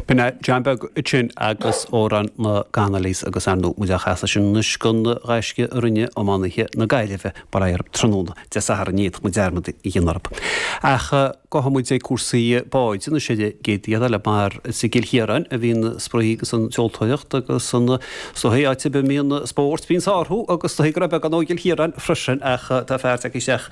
B'in é, John Beag ansin agus Amhrán na gConnollys agus ar ndóigh muid á chasadh sin anois don ghaisce a rinne iománaithe na Gaillimhe mar aon tráthnóna Dé Sathairn, ní fhéadfadh muid dearmad a dhéanamh orthu. Ach gabhfaidh muid ag cúrsaí báid, anois ar an gcéad rian eile mar is i gCill Chiaráin a bhíonn an spraoi agus an tseoltóireacht agus is dóichí, áit a mbíonn spórt, bíonn sárú agus is dóichí go raibh beagán dhó i gCill Chiaráin freisin ach tá fear tagtha isteach.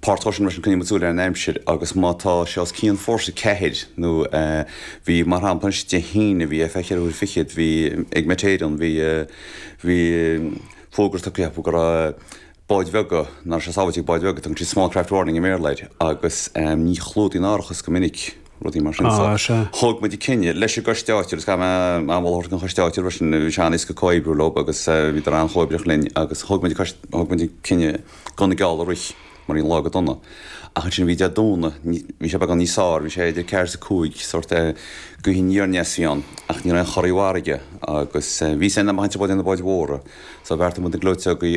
páirt choiteann leis sin, coinníonn muid súil ar an aimsir agus má tá sé os cionn Fórsa 4 nó bhí, mar shampla, anois Dé hAoine, bhí ar feadh ceithre huaire fichead, bhí ag Met Éireann, bhí, bhí fógra tugtha acu go raibh báid bheaga, nach raibh sé sábháilte ag báid bheaga, tugann siad small craft warning i mBéarla air agus ní chlúdaíonn árachas go minic rudaí mar sin. So, thóg muid an cinneadh leis an gCoiste Áitiúil, agus caithfidh mé a mholadh an Choiste Áitiúil freisin, bhí sé an-éasca comhoibriú leo agus bhíodar an-chomhoibríoch linn agus thóg muid an, thóg muid an cinneadh, Gan na geallta a rith, mar bhí an lá go dona. Ach ansin bhí Dé Domhnaigh, bhí sé beagán níos fearr, bhí sé idir ceathair is a cúig, sórt eh, gaoth aniar aneas a bhí ann, ach ní raibh aon chorraí i bhfarraige agus eh, bhí sé in am a' chainnt a' báid, na báid mhóra, so bheartaigh muid na gleoiteogaí